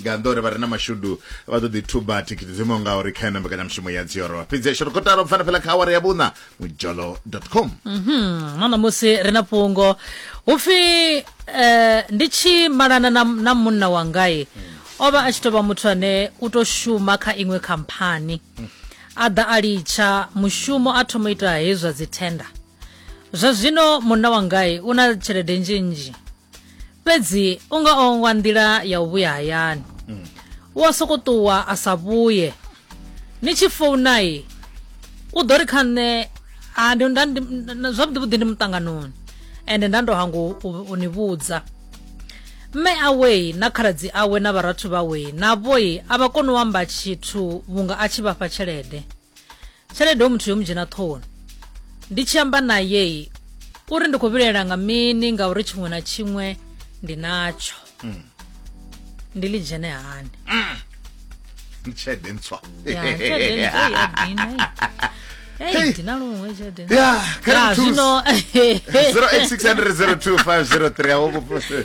nga nnḓa uri vha re na mashudu vha ḓo ḓi thuba thikhithi dzo imaho ngauri kha yona mbekanyamushumo ya dzioro fhedzi ya shorokotalo pfana fhela kha awara ya vhuṋa mujolo com mhm, na ṋamusi ri na fhungo hu pfi um eh, ndi tshi malana na munna wangai o vha a tshi tou vha muthu ane u tou shuma kha iṅwe khamphani a ḓa a litsha mushumo a thoma ita hezwi zwa dzithenda zwa zwino munna wangai u na tshelede nzhinzhi fhedzi u nga ongwa nḓila ya u vhuya hayani mm. u a soko ṱuwa a sa vhuye ni tshi founai u ḓo ri kha nṋe zwavhuḓi vhuḓi ndi muṱanganoni ende nda ndo hango u ni vhudza mme awei na khaladzi awe na vharathu vhawei na vhoi a vha koni u amba tshithu vhunga a tshi vhafha tshelede tshelede o muthu yo mu dzhena ṱhohoni ndi tshi amba naye uri ndi khou vhilaela nga mini ngauri tshiṅwe na tshiṅwe ndi natsho mm. ndi ḽi dzhene hani mm. tshelede ntswa zwino 086002503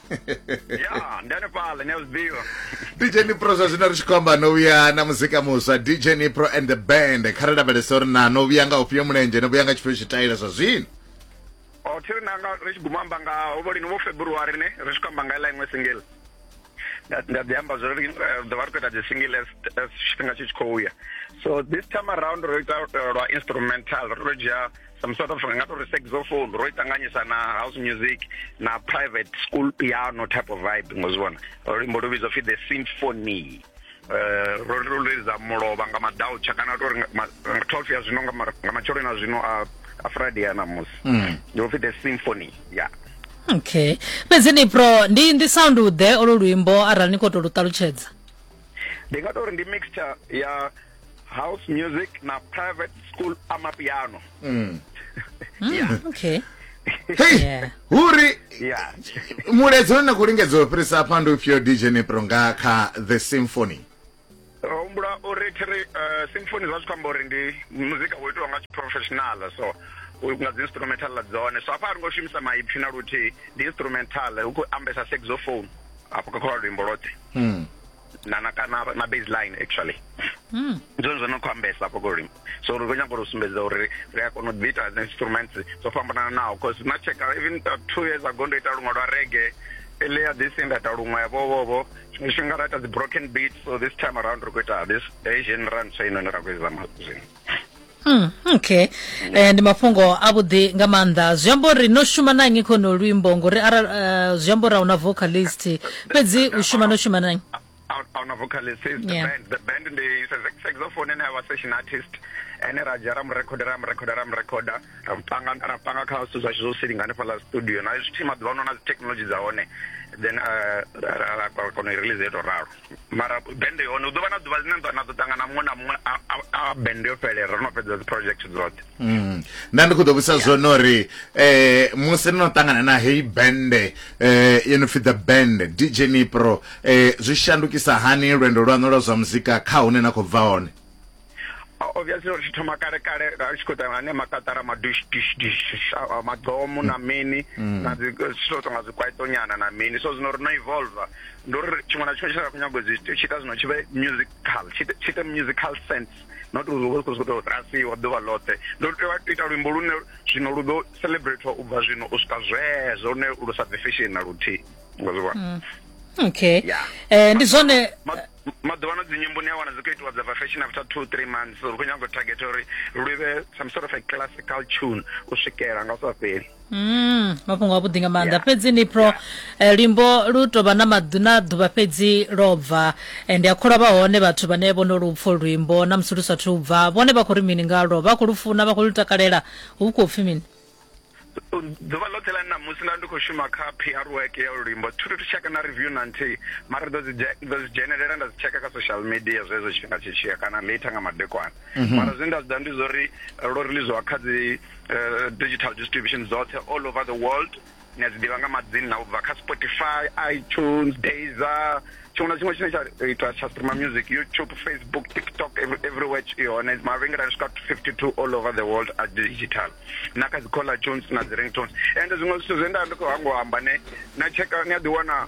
ya ndi hanefhaḽa ni a zwi ḓivha dj nipro zwa zwino ri tshi khou amba no vhuya na muzika muswa dj nipro and the band kha ri lavhelesa uri na no vhuya nga ufhio mulenzhe no vhuya nga tshifhio tshitaila zwa zwino o thi ri nanga ri tshi guma amba nga hovho lini vho february ne ri tshi khou amba nga iḽa iṅwe single Nda- nda ḓi amba zwori eh, ḓo vha ri khou ita dzi single as as tshifhinga tshi tshi khou ya so this time around ro ita eh, lwa instrumental ro dzhia some sort of ri nga to ri saxophone ro itanganyisa na house music na private school piano type of vibe ngozibona luimbo lu vhidzwa pfi the symphony eh, ro ri lulelisa mulovha nga madautsha kana to ri twelve ya zwino nga matsheloni a zwino a friday a namusi mm. ndi pfi the symphony ya okay fhedzi ni pro ndi ndi sound ḓe olo luimbo arali ni khou tou lu ṱalutshedza ndi nga tou ri ndi mixture ya house music na private school amapiano Mm. Mm, okay Hey, Yeah. huri yeah muledzi une na khou lingedza u fhirisa afha ndi ufhio dj nipro nga kha the symphony ro humbula uri thiri uh, symphony zwa zwi khou amba uri ndi muzika wo itiwa nga tshiprofessional so u- nga dzi instrumental ḽa dzone so afha a ri ngo shumisa maipfi na luthihi ndi instrumental hu khou ambesa saxophone afho kha kha luimbo lothe Mm. na na kana na baseline actually mm. zwone zwo no khou ambesa afho kolimi so ri khou nyanga uri sumbedza uri ri a kona u ḓiita dzi instruments dzo fhambananaho bcause na checka even uh, two years ago ndo ita luṅwe lwa rege earlier this year nda ita luṅwe yavhovovo tshiṅwe tshifhinga ra ita dzi broken beat so this time around ri khou ita this asian run so inoni ra khou izama zwino Mm, okay eh, ndi mafhungo avhuḓi nga maanḓa zwi amba uri no shuma na nnyi khono luimbo ngori arali uh, zwi amba uri a una vocalist fhedzi u shuma no shuma na nnyi on a vocalist is the yeah. band the band ndi is a saxophone and our session artist ene ra dzhia ra mu rekhoda ra mu rekhoda ra mu rekhoda ra panga ra panga kha zwithu zwashu zwo silinga hanefha la studio na zwi thima ḓuvha no na dzi technology dza hone then uh, ra ra kona u release eto ralo mara bende yone u ḓo vha na ḓuvha ḽine na ḓo ṱangana muṅwe na muṅwe a bende yo fhelela ro no fhedza dzi project dzoṱhe mm. nda ndi khou ḓo vhusa zwone uri um musi no ṱangana na heyi bende um yo no pfi the band dj nipro um zwi shandukisa hani lwendo lwaṋu lwa zwa muzika kha hune na khou bva hone obviously uri tshi thoma kale kale a tshi khou ḓa nga ne makatara madush dish dish madomo na mini mm. na dzi silo tonga dzi kwaito nyana na mini so zwino ri no evolve ndi uri tshiṅwe na tshiṅwe tshi sa khou nyago dzi tshi ita zwino tshi vhe musical tshi ite musical sense not uri uvha khou sokou rasiwa ḓuvha ḽoṱhe ndo tea u ita luimbo lune zwino lu ḓo celebrate u bva zwino u swika zwezwo lune lu sa bve fashion na luthihi ngazwiwa mm. okay eh ndi zwone maḓuvhano dzinyimbo ni a wana dzi khou itiwa dza bva fashion after two three months uri khou nyanga u target uri lu vhe some sort of a classical tune u swikela nga u sa fheli Mm, mafhungo a vhuḓi nga maanḓa Yeah. fhedzi ni pro Yeah. eh, luimbo lu tovha na maḓu na ḓuvha fhedzi lo bva Eh, ndi a kholwa vha hone vhathu vhane vho no lu pfo luimbo na musi lu sathu bva vhone vha khou ri mini ngalwo vha khou lu funa vha khou lu takalela hu khou pfi mini ḓuvha ḽoṱhe ḽa ṋamusi nda ndi khou shuma kha pr work ya lulimbo thuthi thi tsheka na review na nthihi mara ḓo dzi dzhenelela nda dzi tsheka kha social media zwezwo tshifhinga tshi tshiya kana later nga madekwana mhm. mara zwine nda zwi ḓa ndi zwa uri lo releasiwa kha dzi eh, digital distribution dzoṱhe all over the world Ni a dzi ḓivha nga madzina na u bva kha Spotify, iTunes, Deezer, tshiṅwe na tshiṅwe tshine tsha eh, itwa tsha streamer music, YouTube, Facebook, TikTok, every, everywhere i hone. Mavhengele a swika 52 all over the world a digital. Na kha dzi caller tunes na dzi ringtones. And zwiṅwe zwithu zwe nda ndi khou hangwa amba ne na tsheka ni a ḓi wana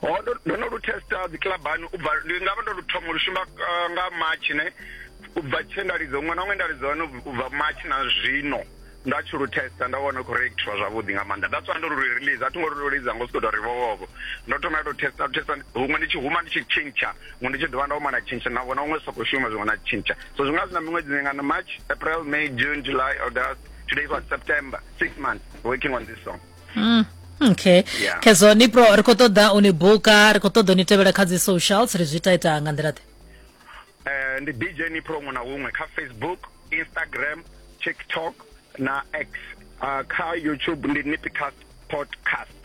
ho oh, ndo no lu testa dzi clubani u bva ndi nga vha ndo lu thoma lu shuma uh, nga march ne u bva tshe nda lidza ṅwana ṅwe nda lidza hone u bva march na zwino nda tshi lu testa nda vhona khou reactiva zwavhuḓi nga maanḓa that's why ndo lu release a thi ngo lu lidza ngo siko tori vhovhovo ndo thoma to testa to testa huṅwe ndi tshi huma ndi tshi tshintsha huṅwe ndi tshi dovha nda huma na tshintsha na vhona huṅwe soko shuma zwiṅwe na tshintsha so zwi nga zwi na miṅwedzi mingana march april may june july august today is what september six months working on this song mm. okay yeah. khezwo ni pro ri khou ṱoḓa u ni buka ri khou ṱoḓa u ni tevhela kha dzi socials ri zwi ita ita nga nḓila ḓe um ndi dj ni pro huṅwe na huṅwe kha facebook instagram tiktok na x uh, kha youtube ndi nipicast podcast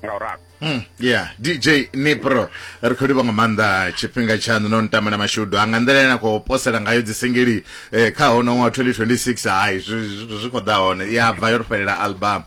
nga uralo Mm, yeah dj nipro ri khou livha nga maanḓa tshifhinga tshaṋu no ntama na mashudu a nga nḓila ene a khou posela ngayo dzisingili eh, kha hono ṅwaha 2026 hai zwi khou ḓa hone ya bva yo ri fhelela album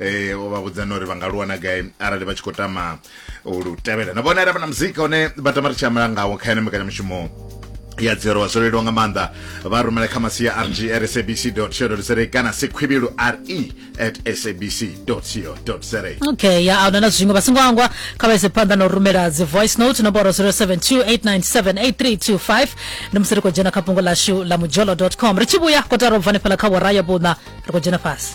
eh o vha vhudza nori vha nga luwana gai arali vha tshi khou tama u lu tevhela na vhona ravha na muzika une vha tama ri tshi amala ngawo kha ene mbekanyamushumo ya dzero zwo leluwa nga maanḓa vha rumela kha masia rg at sabc co za kana sikhwibilu re at sabc co za okay ya ahuna na zwiṅwe vha songo angwa kha vha ise phanḓa na u rumela dzi voice note nomboro 0728978325 ndi musi ri khou dzhena kha fhungo lashu la mujolo com ri tshi vhuya kotara u bva hanefhala kha vhoraya vhuṋa ri khou dzhena fhasi